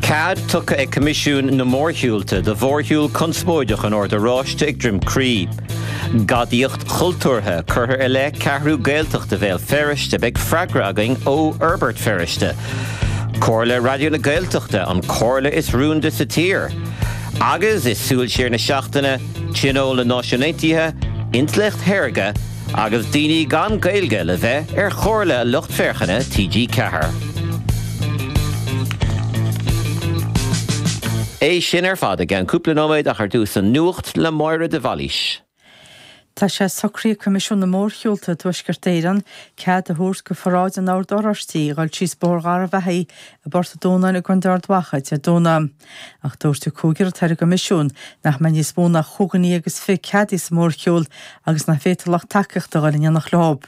Cead tugtha ag Coimisiún na Mórshiúlta do mhórshiúl conspóideach an Oird Oráistigh ag Droim Crí. Gadaíocht chultúrtha curtha i leith Ceathrú Gaeltachta Bhéal Feirste, beidh freagra againn ó Fhorbairt Feirste. Comhairle Raidió na Gaeltachta, an comhairle is rúnda sa tír. Agus, i súil siar na seachtaine, Tionól na Náisiún Aontaithe, intleacht shaorga, Agus daoine gan Gaeilge le bheith ar chomhairle lucht féachana TG Ceathair. É sin ar fad i gceann cúpla nóiméad ach ar dtús an nuacht le Máire de Bhailís. Tá sé socraithe ag Coimisiún na Mórshiúlta i dTuaisceart Éireann cead a thabhairt do pharáid an Oird Oráistigh a dhul síos Bóthar Gharbh Achaidh i bPort an Dúnáin i gContae Ard Mhacha Dé Domhnaigh. Ach dúirt an cúigear atá ar an gcoimisiún nach mbeidh níos mó ná chúig dhuine dhéag is fiche ceadaithe sa mórshiúl agus nach bhféadfadh lucht tacaíochta a dhul in éineacht leo.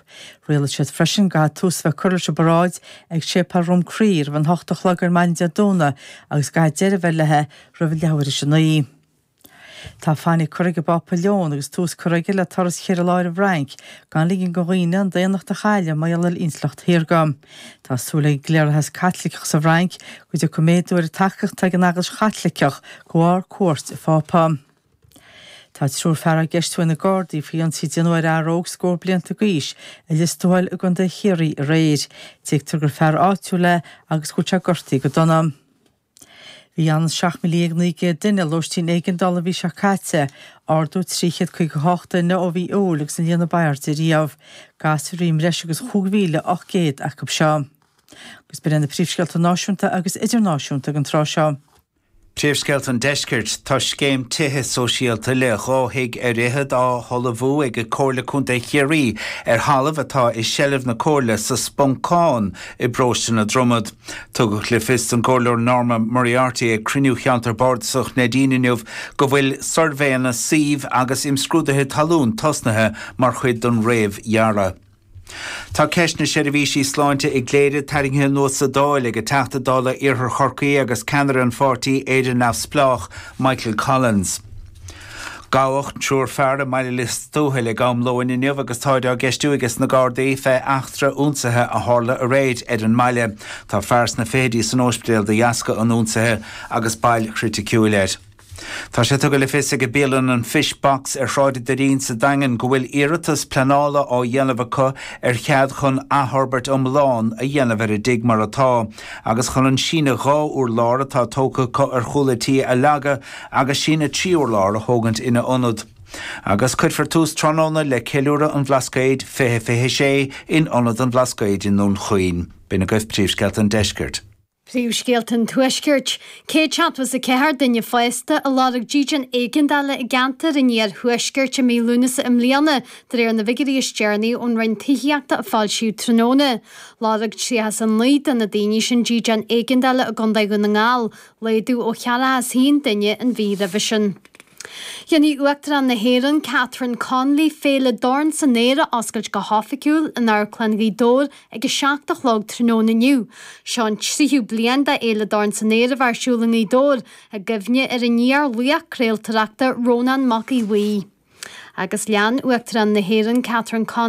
Rialaigh siad freisin go gcaithfeadh tús a bheith curtha leis an bparáid ag Séipeál Dhroim Crí roimh an hocht a chlog ar maidin Dé Domhnaigh agus go gcaithfeadh deireadh a bheith léithi roimh leathuair tar éis a naoi. Tá fainic curtha ag an bPápa Leon agus tús curtha aige le turas cheithre lá ar an bhFrainc gan ligean do dhaoine an daonnacht a chailleadh mar gheall ar intleacht shaorga. Tá súil ag an gcliarlathas Caitliceach sa bhFrainc go dtiocfaidh méadú ar an tacaíocht atá ag an Eaglais Chaitliceach de bharr cuairt an Phápa. Tá triúr fear á gceistiú ag na Gardaí faoi ionsaí a déanadh ar fhear óg scór blianta d'aois i Lios Tuathail i gContae Chiarraí aréir. Tuigtear gur fear áitiúil é agus go bhfuil sé gortaithe go dona. Bhí ionann is 17,900 duine i lóistín éigeandála an mhí seo caite, ardú 358 duine ó mhí Iúil agus an líon ab airde riamh. Gasúir i mbreis agus 5,800 acu seo. Agus b'in iad na príomhscéalta náisiúnta agus idirnáisiúnta ag an tráth seo. Príomhscéalta an deiscirt, Tá scéim tithe sóisialta le dhá thigh ar fhichead á hullmhú ag Comhairle Contae Chiarraí ar thalamh atá i seilbh na Comhairle sa Spuncán i bparóiste na Dromad. Tugadh le fios don gComhairleoir Norma Moriarty ag cruinniú Cheantar Bardasach Neidín inniu go bhfuil suirbhéanna suímh agus imscrúduithe talún tosnaithe mar chuid den réamhdhearadh. Tá ceist na seirbhísí sláinte i gCléire tarraingthe anuas sa Dáil ag an Teachta Dála Iarthar Chorcaí agus ceannaire an pháirtí Éire Neamhspleách, Michael Collins. Gabhadh triúr fear i mBaile Lios Tuathail ag am lóin inniu agus táid á gceistiú ages na Gardaí fé eachtra ionsaithe a tharla aréir ar an mbaile. Tá fear sna fichidí san óispidéal de dheasca an ionsaithe agus bail chriticiúil air. Tá sé tugtha le fios ag bialann an Fish Box ar Shráid a' Doirín sa Daingean go bhfuil iarratas pleanála á dhéanamh acu ar chead chun athfhorbairt iomlán a dhéanamh ar an dtigh mar atá. agus chun an síneadh dhá urlár atá tógtha acu ar chúl a dtí a leagadh agus síneadh trí urlár a thógaint ina ionad. Agus cuirfear tús tráthnóna le Ceiliúradh an Bhlascaoid 2026 in Ionad an Bhlascaoid i nDún Chaoin. B'in agaibh príomhscéalta an deiscirt. Príomhscéalta an tuaiscirt. 174 duine fásta a lorg dídean éigeandála i gceantar an iarthuaiscirt i mí Lúnasa i mbliana, de réir na bhfigiuirí is deireanaí ón Roinn Tithíochta a foilsíodh tráthnóna. Lorg 39 de na daoine sin dídean éigeandála i gContae Dhún na nGall, laghdú ó cheathracha a haon duine an mhí roimhe sin. Déanfaidh Uachtarán na hÉireann Catherine Connolly féile Dorn san Aer a oscailt go hoifigiúil in Amharclann Ghaoth Dobhair ag a seacht a chlog tráthnóna inniu. Seo an tríú bliain d'fhéile Dorn san Aer a bheith ar siúl i nGaoth Dobhair, i gcuimhne ar an laoch craoltóireachta Rónán Mac Aodh Bhuí. Agus lean Uachtarán na hÉireann Catherine Connolly,